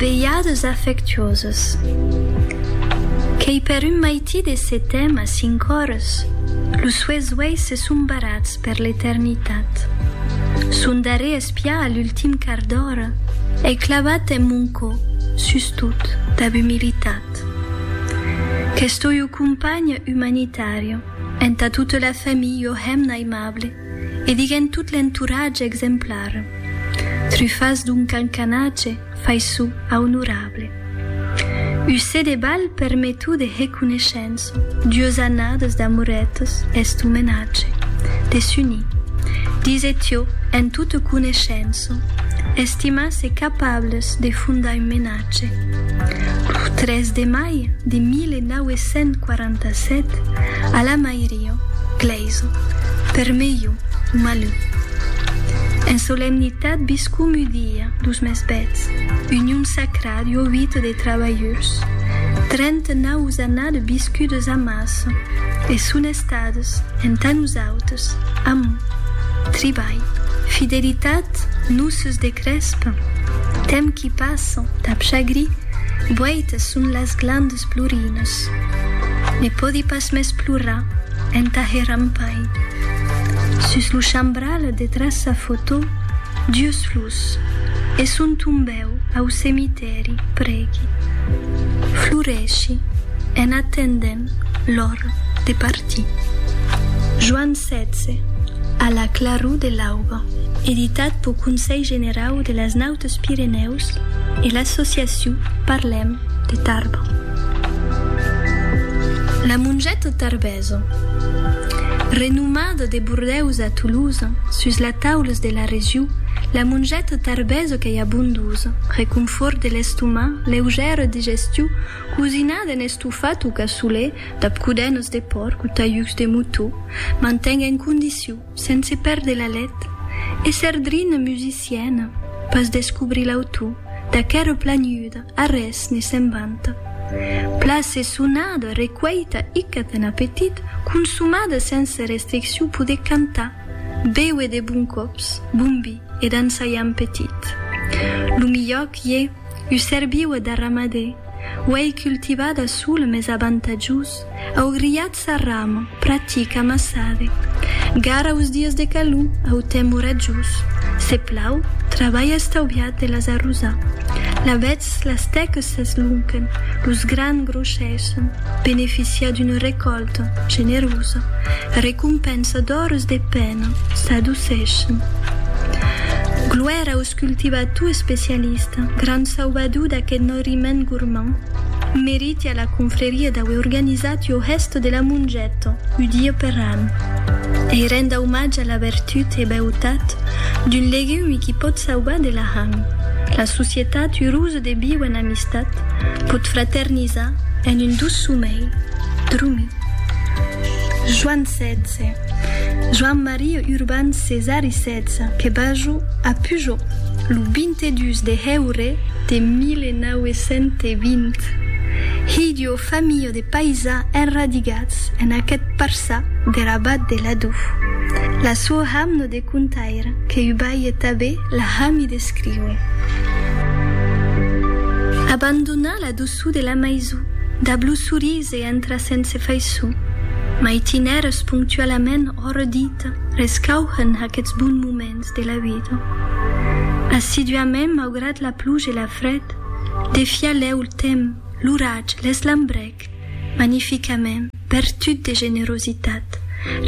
Veiades afectuoses. Qu'ei per un maití de setèm a cinc ores, los sues uèis se son barrats per l'eternitat. Son darrer espiar a l'ultim quart d'ora ei clavat en mon cò, sustot, dab umilitat. Qu'estoi o companhe umanitària, entà tota la familh o hemna aimable. E diguènt tot l'entoratge exemplar, trufas d'un cancanatge faiçu a onorable. Usé de balh permetu de reconeishença, dues annades d'amoretes est omenatge de s'unir, dise Tió en tota coneishença, estimas e capables de fondar un menatge. Lo 3 de mai de 1947, a la mairia, Paraiso, per melhu o malhu. En solemnitat biscum u dia dos mes bèths, union sacra du ovito des trabalhurs, trenta naus annades biscudes amasso e son estades entà nosautes, amor, tribalh, fidelitat, noces de crèsp, temps qui passa, tap chagrí, boitas son las glandes plorines. Ne pòdi pas Mes plora entà hèr ampai. Sus lo chambral detràs sa fotò, Dius lus, e son tombèu au cemitèri prègui. Floreshi en atendent l'ora de partir. Joan setze, a la claror de l'auba. Editat pau Conselh Generau de las Naus Deus Pirenèus e l'associacion Parlem de Tarbes. La mongeta tarbesa, renomada de Bordèus a Tolosa, sus la taules de la region, la mongeta tarbesa qu'ei abondosa, reconfòrt de l'estomà, leugèra digestion, cosinada en estofat o cassolè, dab codenas de pòrc o talhucs de motó, manten en condition. Sense perdre l'alet, èsser drina musiciena, pas descobrir l'autor d'aquera planiuda a res ne se'n vanta. Place sonada, recueita, icat en apetit, consomada sense restriccion poder cantar, béuer de bon còps, bon vi e dançar ja en petit. Lo milhor qu'ie, usser viua d'arramadé, uèi cultivada sola mes avantatjós, Augriat sa ramo, pratic amassade. Gar aus dies de calor, au temps oratjós. Se plau, trabalha estauviat de las arrosar. La vetz, las tèques s'eslonquen, los grans grossèssen, beneficiar d'una recòlta, generosa, recompensa d'ores de pena, s'adocessen. Gloèra au Cultivator especialista, grand sauvador d'aqueth norriment gormand, meriti a la confreria d'auer organizat ua hèsta de la mongeta ua dia per an e renda omatge a la vertut e beutat d'un legum qui pòt sauvar de l'ahang. La societat urosa de viu en amistat pòt fraternizar en un doç somèi. Drummi. Joan 16. Joan Maria Urban Cesar i Setz que Bajo a Pujol lo 22 de heure de 1920. Hilh d'ua familha de paisans enradigats en aqueth parçà der abat de Ladú. La sua hamno de contaire que u balhe tabé la hami d'escriure. Abandonà la doçu de la maison dab lo sorís Se entra sense faiçon. Mai tinèrs ponctualament ora dita rescauhen aqueths bons moments de la vida. Assiduament, maugrat la pluja e la fred, defiar lèu el temps, l'oratge, l'eslambrèc, magnificament, vertut de generositat,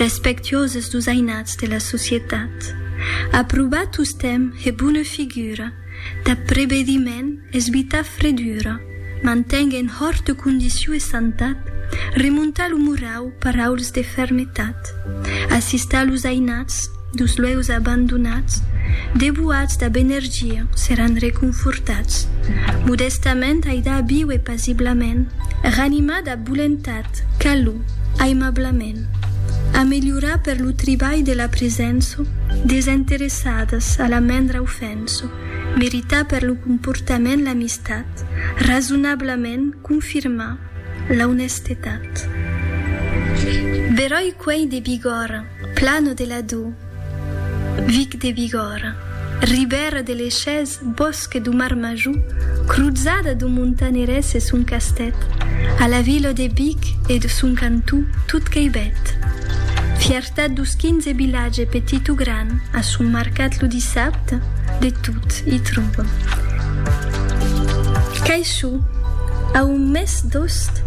respectuoses dus ainats de la societat. Aprobar tostemps hè bona figura, Tap prebediment es bita fredura, manteng en hòrte condició e santat, remonta lo morau per auls de fermetat, assista los ainats dus lueus abandonats, debuats dab energia seran reconfortats, modestament aida a viuer pasiblament, ranimar dab volentat, calor, aimablament, ameliorar per lo tribalh de la presença desinteressadas a la mendra ofèrta. Lorenzo merita per lo comportament l'amistat, rasonablament confirma l'aunestetat. Beròi quei de Bigòrra, Plano de la Dô, Vic de Bigòrra, Ribèra de l'Echés, Bòsque do Marmajor, cruzada do Montanerès e son castèth, a la vila de Vic e son cantó, tot quei bèth. Tad dus quinze vilatge petit o gran a son marcat lo dissabte, de tot i tròba. Caishou, a un mes d'ost,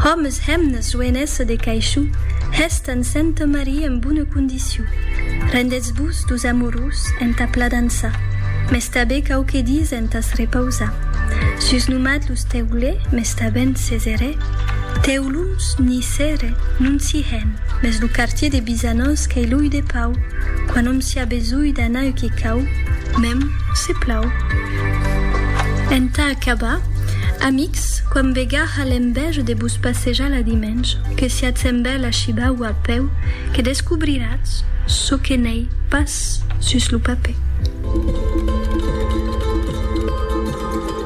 òmes, hemnes, joenessa de Caishou, hèstan Santa Maria en bona condició. Rendetz-vos dus amorós entà pla dançar, mes tabé quauque dies entàs repausar. Sus nomat los teulè, mes tabèn ses erè, teu. Lums ni cere non s'i hèn, mès lo quartier de Bizanós qu'ei l'ull de pau, quan òm s'i a besonh d'anar uqu'i cau, mèm se plau. Entà acabar, amics, quan vegarà l'envèja de vos passejar la dimenge, que siatz amb ela a shibar o a peu, que descobriratz çò que n'ei pas sus lo papè.